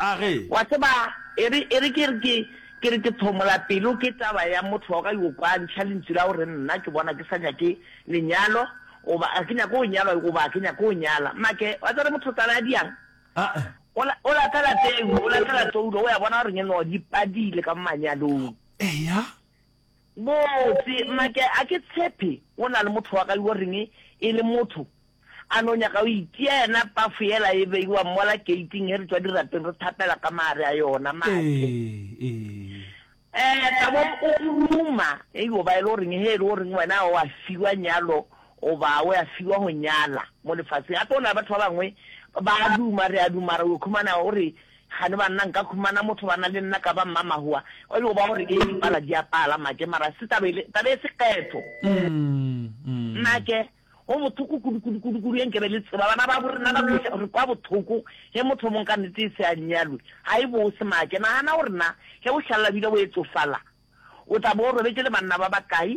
A re. Wa tseba, e re, e re ke re ke, ke re ke thomola pelo ke taba ya motho wa ka yo kwa a ntšha lentšu la go re, Nna ke bona ke sa nyake lenyalo, goba ga ke nyake go nyalwa, goba ga ke nyake go nyala. Make, wa tseba re mothotsana ya diang? A. O la, o latela teng, o latela toulo, o ya bona gore ngeno di padile ka manyalong. Eya, Botse, Make, a ke tshepe go na le motho wa gayo o reng e le motho a no nyaka go itia yena pafo yela e beiwa mola keiting ge re tšwa dirapeng re thapela ka maare a yona. Make, Ee, ee. Tabo o ruma, E yo ba e le go reng ge e le go reng wena o a fiwa nyalo goba o ya fiwa go nyala mo lefaseng? Gape go na le batho ba bangwe ba a duma, re a duma, mara o yo khumana o re Kgane banna nka khumana motho bana le nna ka ba mmamahoa o bego ba gore ee dipala di a pala make mara se taba ele taba e sekgetho make go bothoko kudu kudu kudu kudu e nkebe le tseba bana ba borena ba kweša re kwa bothoko ge motho mong ka nnete e se a nyalwe ga e bose make nagana gore na ge bohlalla bile bo etsofala o tla bo robetše le banna ba bakae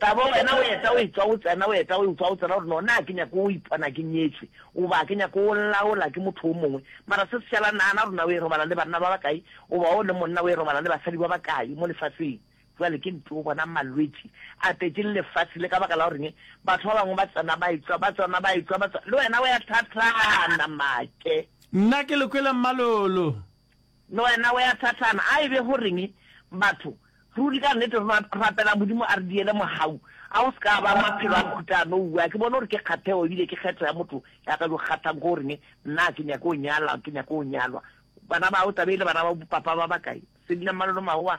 Ka bo wena o eta o etswa o tsena, o eta o etswa o tsena, gore no na ke nyako o ipona ke nyetšwe, goba ke nyako o laola ke motho o mongwe. Mara se se šala, nagana gore na o e robala le banna ba bakae, goba o le monna o e robala le basadi ba bakae mo lefaseng. Bjale ke ntoo bonang malwetši a tletšeng lefase le ka baka la goreng batho ba bangwe ba tsena ba etswa, ba tsona ba etswa, ba tswa, le wena o ya tlhatlana make. Nna ke le kwele mmalolo. Le wena o ya thathana. A e be go reng? Batho, ruri ka nnete re rapela Modimo a re diele mogau. A go se ka ba maphelo a mohuta a no wu. A ke bone gore ke kgathego ebile ke kgetho ya motho ya ka yo kgathang go reng, Nna ke nyake go nyala, ke nyake go nyalwa. Bana bao, taba e le bana ba bopapa ba bakae? Sedi la Mmalolo Maowa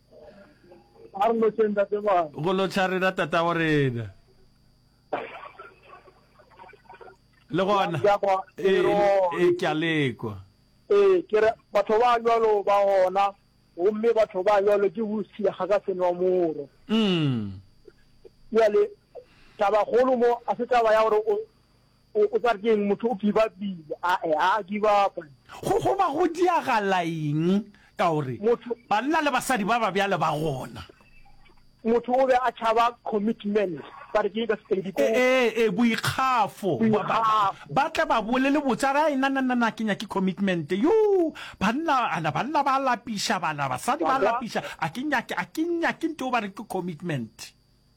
a re lotšeng tate bana go lotšha rena tatago rena le gona e ke a lekwa ee ke re batho ba jalo ba gona gomme batho ba jalo ke bosia ga ka senwa moro mm. jale tabakgolo mo a se taba ya gore O, o tla re ke eng? Motho o give upile. A, e, a a give upa. Go, go ba go diagala eng ka gore Motho. banna le basadi ba ba bjale ba gona? Motho o be a tšhaba commitment, ba re ke eng ka Sepedi? Ko. E, e, e, boikgafo. Ba, ba, Boikgafo. ba tle ba bole le botse, a re, Ai, na, na, na, na, ke nyake commitment. Yo, banna, a na, banna ba lapiša, ba na, basadi ba Wa kwa? lapiša, a ke nyake, a ke nyake nto ba re ke commitment.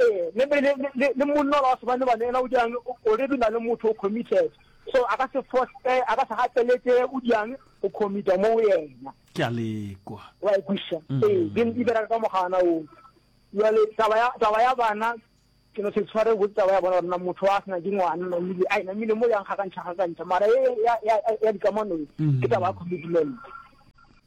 Ee, le, le, le, le, le monna ola wa sebane ba neela o diang o already o na le motho o committed. So a ka se foste, a ka se gateletse o diang go commita mo go yena. Ke a le kwa. Wa e kwisha. Ee, di di bereka ka mogana o. Jwale taba ya taba ya bana ke no se tshware go taba ya bona nna motho wa sena ke ngwana nna mile ai nna mile mo yang ga ka ntsha ga ka ntsha mara ya ya ya ya dikamano ke taba ya commitment.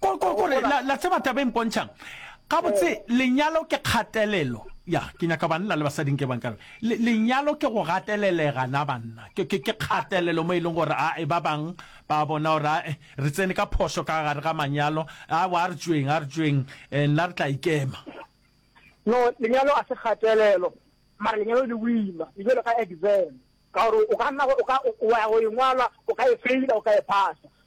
kore la tseba taba e mpontšhang gabotse eh. lenyalo ke kgatelelo ya ke nyaka banna le basading ke bang kare lenyalo ke go gatelelega na banna ke ke ke kgatelelo mo e leng gore a e ba bang ba bona gore eh, re tsene ka phoso ka gare ga manyalo a wa re tsweng a re tsweng eh, nna re tla ikema no lenyalo a se kgatelelo mara lenyalo le wima le jalo ka exam ka gore o ka nna o ka o ya go ingwalwa o ka e faila o ka e phasa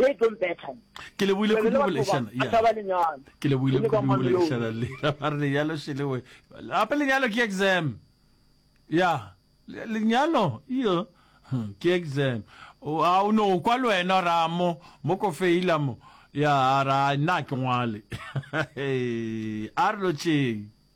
They don't better. Ke le buile kudu go leshana. Ya. Taba lenyalo. Ke le buile kudu go leshana le. Ba re lenyalo se le we. Apa lenyalo ke exam. Ya. Lenyalo iyo hmm, ke exam. O a o no kwa le wena ra mo mo ko feila mo. Ya ra na ke ngwale. A re lo tšeng.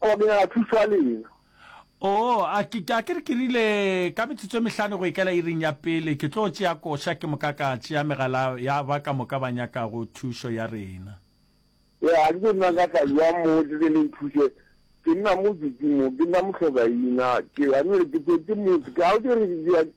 Go abelana thušo ya lena. Oo, a ke, a ke re ke rile, ka metsotso e mehlano go ikela iring ya pele, ke tlo tšea koša ke moka ka tšea megala ya ba ka moka ba nyakago thušo ya rena. Ya, a ke tlo nna ka tla bja mo tle le le nthuše. Ke nna mo Didimo, ke nna mohlokaina. Ke, a nwele ke tšetše motse. Ke, a o tšere, ke,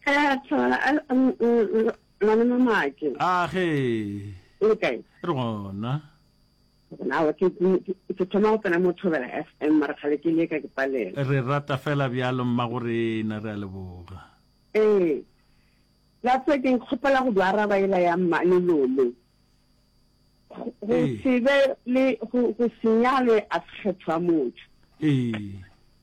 Ge a thola a a m- m- m- malome Maake. A ge. O le kae? Re gona. Na wa ke ke- ke- ke thoma go tsena mo Thobela FM mara kgale ke le ka ke palela. Re rata fela bjalo mmagorena, re a leboga. Ee. That's why ke nkgopela go do araba ela ya mmane Lolo. Go go Ee. se be le go go se nyalwe a sekgethwa motho. Ee.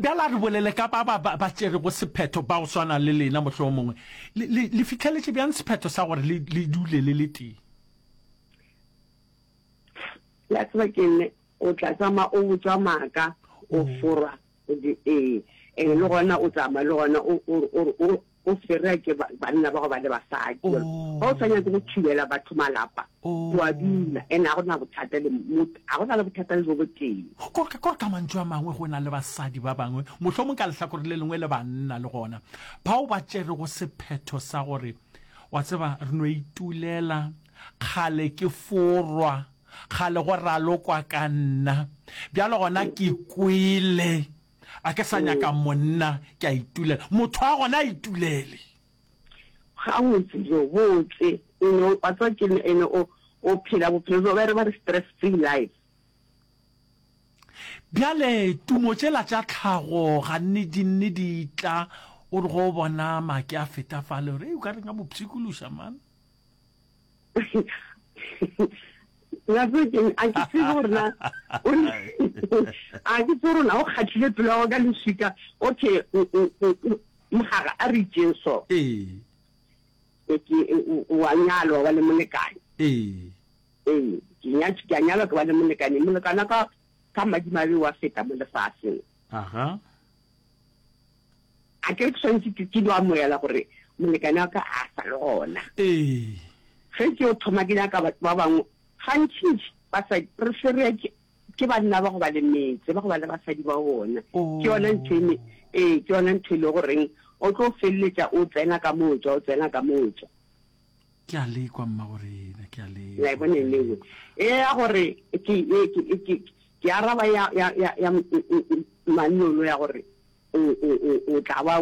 Bjale a re bolele ka ba ba ba tšerego sephetho ba go swana le lena, mohlomongwe le, le, le fitlheletše bjang sephetho sa gore le, le dule le le tee? La tseba ke nne o tla tsama o botswa maaka o forwa o di ee and le gona o tsama le gona o o o O swerwa ke banna ba go ba le basadi, jalo ga o sa nyake go thubela batho malapa, o a dula, ene ga go na bothata le mot, ga go na le bothata le bo botee. Ko, ko, ka mantšu a mangwe, go na le basadi ba bangwe, mohlomong ka lehlakore le lengwe le banna le gona, bao ba tšerego sephetho sa gore, Wa tseba, re no itulela, kgale ke forwa, kgale go ralokwa ka nna, bjale gona ke kwele. A ke sa nyaka monna, ke a itulela. Motho wa gona a itulele. Gabotse, jo botse. You know, wa tseba ke nna ene o, o phela bophelo bjo ba re ba re stress-free life. Bjale tumo tšela tša tlhago gannedinne di tla, o re ge o bona make a feta fale, o re, Hei, o ka re nka mo pshikološa, man. na se ke a ke se rona o ne a ke se rona o khathile pelo ga ka leswika okay mhaga a re tšeng so ee ke wa nyalo wa le molekane ee ee ke nya ke nyalo ke wa le molekane molekana ka ka madimabe wa feta mo lefatsheng aha A ke re ke swanetše ke ke no amoela gore molekane wa ka a sa le gona? Ee. Ge ke yo thoma ke nyaka batho ba bangwe, gantšintši basadi re ferea ke ke banna ba go ba le metse, ba go ba le basadi ba bona. Ke yona ntho e me, ee, ke yona ntho e le goreng o tlo feleletša o tsena ka moja, o tsena ka moja. ke a lekwa mma gore ena ke a lekwa la bona le go e ya gore ke e ke e ke ke araba ya ya ya ya mannolo ya gore o o o o tla ba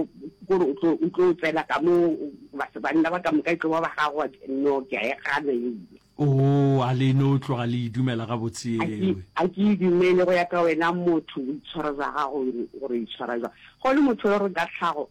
gore o tlo o tlo tsela ka mo ba se banna ba ka moka e tlo ba ba gago no ke e gana e o oh, a le no tloga le idumela ga botse ewe a ke idumele go ya ka wena motho o itshwara za gago gore itshwara za go le motho yo re ka tlhago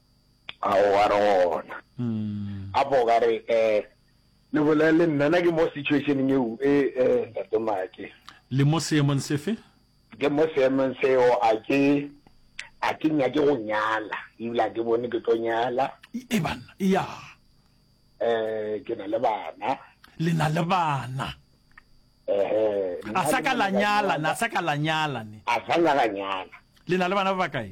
a o a re gona mm. a bo ka re eh le bolele nna na ke mo situationeng eo e eh ntate make le mo seemong sefe ke mo seemong seo a ke a ke nya ke go nyala ebile ke bone ke tlo nyala e bana ya eh ke na le bana le na le bana eh a sa ka la nyala na sa ka la nyala ne a sa la nyala le na le bana ba kae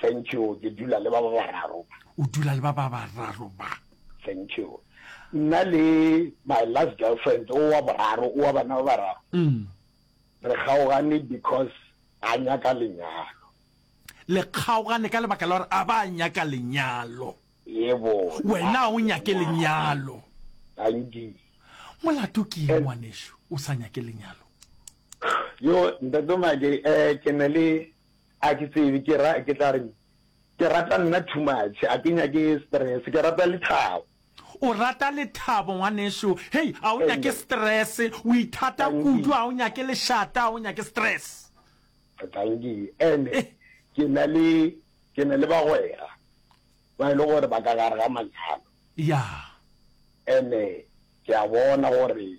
Thank you. Ke dula le ba ba bararo. O dula le ba ba bararo ba. Thank you. Nna le my last girlfriend o wa boraro o wa bana ba bararo. Mm. Re kgaogane because a nyaka lenyalo. Le kgaogane ka lebaka la gore a ba nyaka lenyalo. Yebo. Wena o nyake lenyalo. Anki. Molato ke eng ngwanešu o sa nyake lenyalo? Yo ntate Mage eh ke ne le A ke tsebe ke ra, ke tla reng? Ke rata nna too much, a ke nyake stress, ke rata lethabo. O rata lethabo ngwanešu, hei, a o nyake stress, o ithata kudu, a o nyake lešata, a o nyake stress. Dankie, and ke na le, ke na le bagwera ba e le gore ba ka gare ga manyalo. Yeah. And ke a bona gore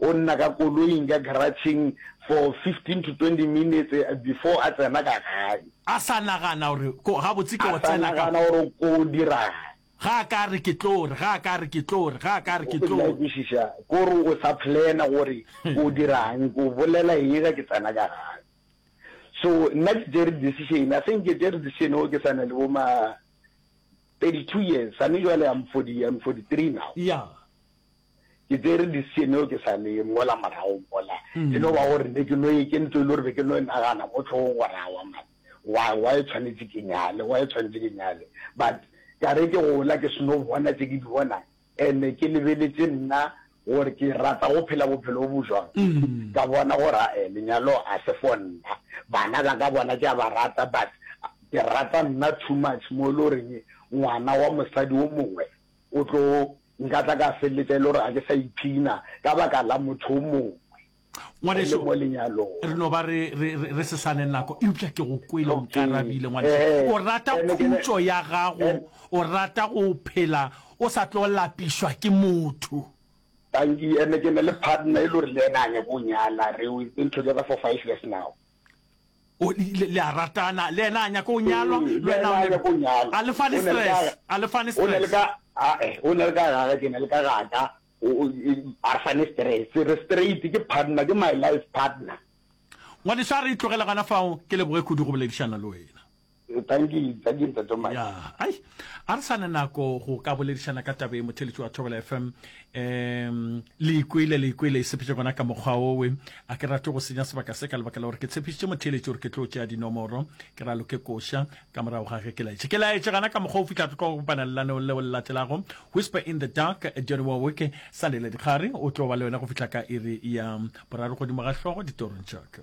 O nna ka koloing ka garage-eng for fifteen to twenty minutes before a tsena ka gae. A sa nagana gore ko, gabotse ke go tsena ka. A sa nagana gore ko dirang. Ga a ka a re ke tlo re, ga a ka a re ke tlo re, ga a ka a re ke tlo re. O tla kwešiša, ko re o sa plan-a gore ko dirang, ko bolela eng ge ke tsena ka gae. So nna ke tšere decision, a se nke tšere decision o ke sa na le bo ma thirty two years, a ne jwale I'm forty, I'm forty three now. Yeah. ke tsere decision eo ke sa le ngola morago mola e no ba gore ne ke no e ke ntlo e le gore be ke no e nagana mo tlhogong gore awa mane wa wa e tshwanetse ke nyale wa e tshwanetse ke nyale but ka re ke gola ke seno bona tse ke di bona ene ke lebeletse nna gore ke rata go phela bophelo bo bo jwang mm. ka bona gore e eh, lenyalo a se fo nna bana ba ka bona ke a ba rata but ke rata nna too much mo e le goreng ngwana wa mosadi o mongwe O tlo nkatla ka feleletša e le gore ga ke sa ipshina ka baka la motho o mongwe re le mo lenyalong. Ngwaneso, re no ba re, re, re, re se sa ne nako, eupša ke go kwele o Okay. nkarabile, ngwaneso. Eh, O rata eh, ne ke ne- khutšo ya gago, eh. o rata go phela o sa tlo lapišwa ke motho. Tanki, ene ke ne le partner e le gore le ena a nyako nyala, re o ntho together for five years now. le a ratana le yena a nyaka go nyalwa le wena o nyaka go nyalwa a le fane stress a le fane stress o ne le ka a eh o ne le ka ga ke ne le ka ga ka o a re fane stress re straight ke partner ke my life partner ngwaneso a re itlogela gana fao ke leboge kudu go boledišana le wena Thank you, thank you Ntate Mike. Ya, ai, a re sa ne nako go ka boledišana ka tabe motheletši wa Thobela FM. Um, le ikwele, le ikwele e sepetše gona ka mokgwa owe. A ke rate go senya sebaka se ka lebaka la gore ke tshepišitše motheletši gore ke tlo tšea dinomoro, ke ra loke koša, ka morago ga ge ke laetše. Ke laetše gana ka mokgwa o fihla tlo go kopana lelaneo leo le latelago, Whisper in the Dark, Johnny Warwick, sa le le dikgare, o tlo ba le wena go fihla ka iri ya boraro godimo ga hlogo ditorong tša ka.